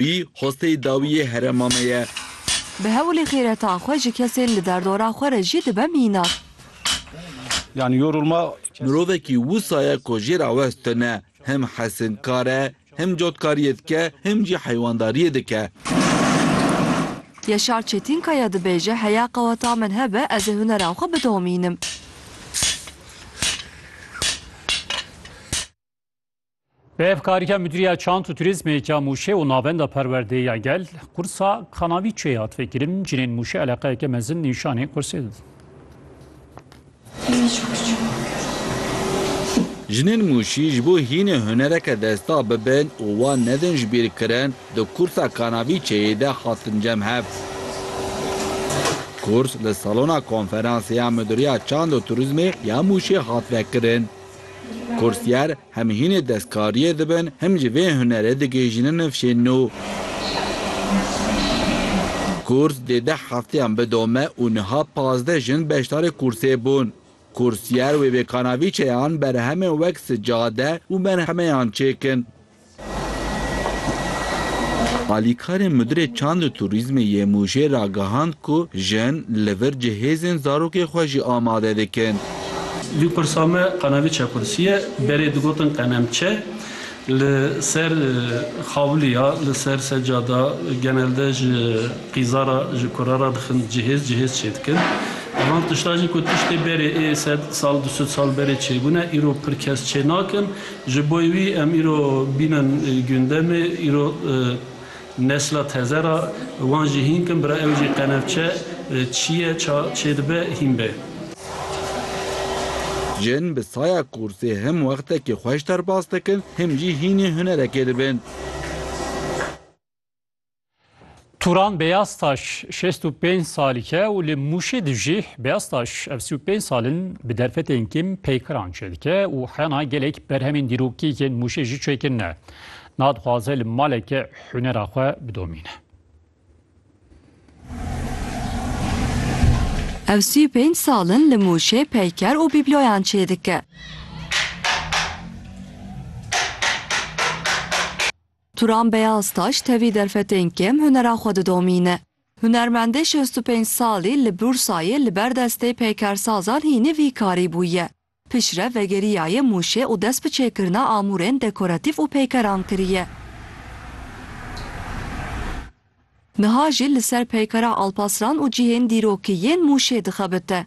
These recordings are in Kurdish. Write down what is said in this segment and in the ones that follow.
Wî hosteyî dawiyê herema me ye. Bi hewlê xêreta xwe ji kesên li derdora xwe re jî dibe mînak. Mirovekî wisa ye ku jê re west tune, him hesinkar e, him cotkariyê dike, him jî heywandariyê dike. Yaşar Çetînkaya dibêje, Heya qeweta min hebe ez ê hunera xwe bidomînim. Bi hevkarîya Mudîriya Çand û Turîzmê ya Mûşê û Navenda Perwerdê ya Gel, qursa Kanavî Çê hat vekirin. Cinên Mûşê eleqeyeke mezin nîşanê qursê didin. Jinên Mûşî ji bo hînê hunereke desta bibin û wan nedin ji bîr kirin, di qursa Kanavî Çêyê de hatin cem hev. Qurs li salona konferansê ya Mudîriya Çand û Turîzmê ya Mûşê hat vekirin. Kursiyer hem hînê destkariyê dibin hem jî vê hunerê digihîjînin nifşên nû. Kurs dê deh hefteyan bidome û niha pazdeh jin beşdarê kursê bûn. Kursiyer wê vê kanavîçeyan berhemên wek sicade û merhemeyan çêkin. Alîkarê Mudirê Çand û Turîzmê yê Mûşê ragihand ku jin li vir cihêzên zarokê xwe jî amade dikin. Dû pirsa me qenevî çekursî ye. Berê digotin qenem çe li ser xawilî ya, li ser secada, genelde ji qîza re, ji kura re dixin cihêz, cihêz çêdikin. Van tiştan jî ku tiştê berê ê sed sal, du sed sal berê çêbûne, îro pir kes çênakin. Ji bo wî em îro bînin gundemê, îro nesla teze re, wan jî hîn kin bira ew jî qenevçe çi ye, ça çê dibe hîn be. Jin bi saya kûrsê him wextekî xweş derbas dikin him jî hînî hunerekê dibin. Turan Beyaztaş 65 salîke û li Mûşê di jî Beyaztaş ev 35 salin bi derfetên kêm peykiran çêdike û hena gelek berhemên dîrokî yên Mûşê jî çêkirine. Na dixwaze li maleke hunera xwe bidomîne. Ev sî û pênc sal in li Mûşê peyker û bîbloyan çêdike. Turan Beyaztaş tevî derfetên kêm hunera xwe didomîne. Hunermendê şêst û pênc salî li Bursayê li ber destê peykersazan hînî vî karî bûye. Piştre vegeriyaye Mûşê û dest bi çêkirina amûrên dekoratîf û peykeran kiriye. Niha jî li ser peykera Alpaslan û cihên dîrokî yên Mûşê dixebite.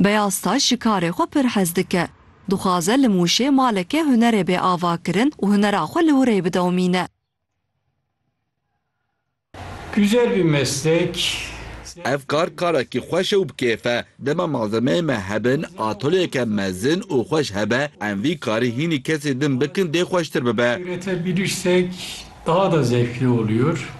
Beyaztaş ji karê xwe pir hez dike. Dixwaze li Mûşê maleke hunerê bê avakirin û hunera xwe li wir ê bidewmîne. Güzel bir meslek. Ev kar karekî xweş e û bi kêf e. Dema malzemeyên me hebin, atolyeke mezin û xweş hebe, em vî karî hînî kesê din bikin dê xweştir bibe. Üretebilirsek daha da zevkli oluyor.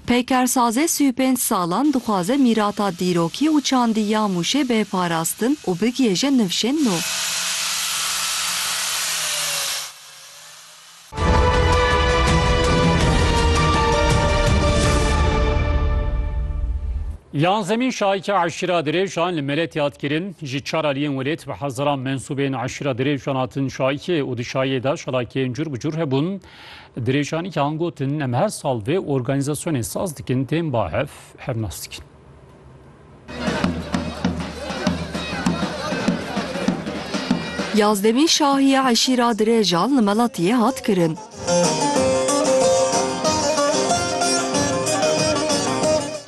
Peykersazê sî û pênc salan dixwaze mîrata dîrokî û çandî ya Mûşê bê parastin û bigihêje nivşên nû. Yan zemîn şahîke eşîra dirêjan li Meletê hat kirin. Ji çar aliyên welêt bi hezaran mensûbên eşîra dirêjan hatin şahîkê û di şahiyê de çalakiyên cûr bi cûr hebûn. Dirêjanî an gotin, Em her sal vê organîzasyonê saz dikin, tên ba hev hev nas dikin. Yazdemî şahiya eşîra Dirêjan li Melatiyê hat kirin.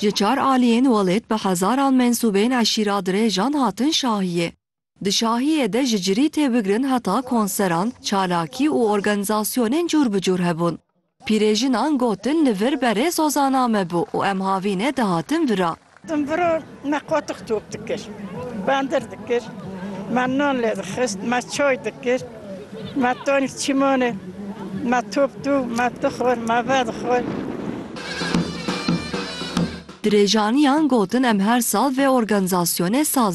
Ji çar aliyên welêt bi hezaran mensûbên eşîra Dirêjan hatin şahiyê. Di şahiyê de ji cirî tê bigirin heta konseran, çalakî û organîzasyonên cûr bi cûr hebûn. Pîrêjinan gotin li vir berê Zozana me bû û em havînê dihatin vira. Din vira me qotiq top dikir, bendir dikir, me nan lê dixist, me çay dikir, me tanî çîmanê me top dû, me dixwar, me vedixwar. Dirêjaniyan gotin em her sal vê organîzasyonê saz.